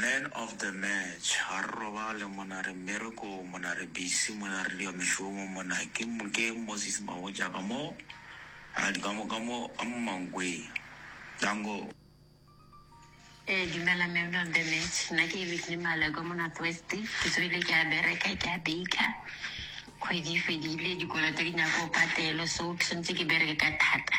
Man of the match, ga re robale mona re mmerekong mona re busy mona re diwa mešomo mona ke ke Moses Mabotja ka mo a di ka mo ka mo ka mo mankweng danko. Ee, dumela man of the match. Nna ke Whitney Maleko mo North West. Ke tsogile ke a bereka, ke a baker. Kgwedi e fedile, dikoloto di nyaka go patelwa so ke tshwanetse ke bereke ka thata.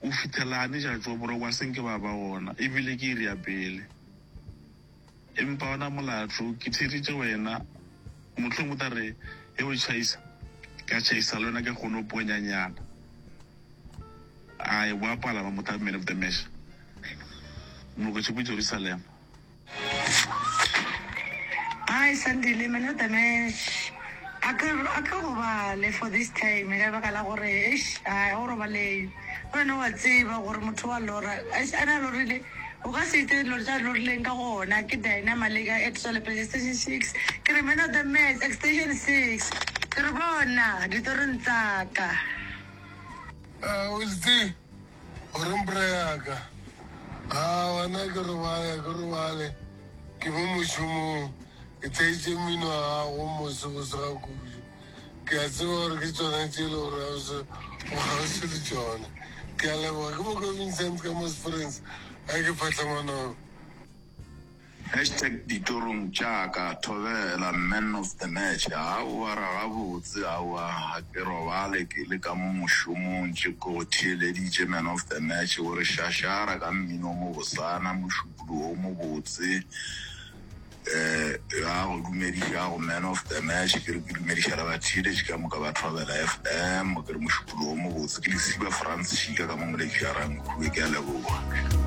Go fihlela a neša tšo boroko a se nke ba ba wona e bile ke e ria pele. Empa wona molato ke theeditše wena, mohlomong o tla re ge o tšhaisa ka tšhaisa le wena ke kgone go ponya nyana. A ekwa a palama motamene, Mr. Mesh, Molokošepu Jerusalema. Hi Sandile, my name Danesh. A ke a ke robale for this time ka baka la gore eish ai o robaleng. Go wena wa tseba gore motho wa lora eish ana lorile o ka se itse dilo tsa lorileng ka gona ke Dina Maleka at Sole Place Station Six. Ke re man of the match extension six. Ke re bona ditorong tsa ka. Uh, Wilty. O reng bra yaka? A wena ke robale, ke robale. Ke mo mošomong, ke theetše mmino wa gago mose bosega kudu. Ke a tseba gore ke tšona tše e le gore o se o kgauswi le tšona. Ke a leboga. Ke mo ka Vincent ka mo Springs, a ke Phatlamanong. Hashtag ditorong tša ka Thobela man of the match Aowa ra gabotse aowa ga ke robale ke le ka mo mošomong tše ke go theeleditše man of the match O re šašara ka mmino o mobosana mošupulu o mobotse eh Ya go dumedišago man of the match Ke re ke dumediša le batheeletši ka moka ba Thobela FM Ke re mošupulu o mobotse ke Lesiba Frans Šika ka mo Moletši Jarang Khuwe Ke a leboga.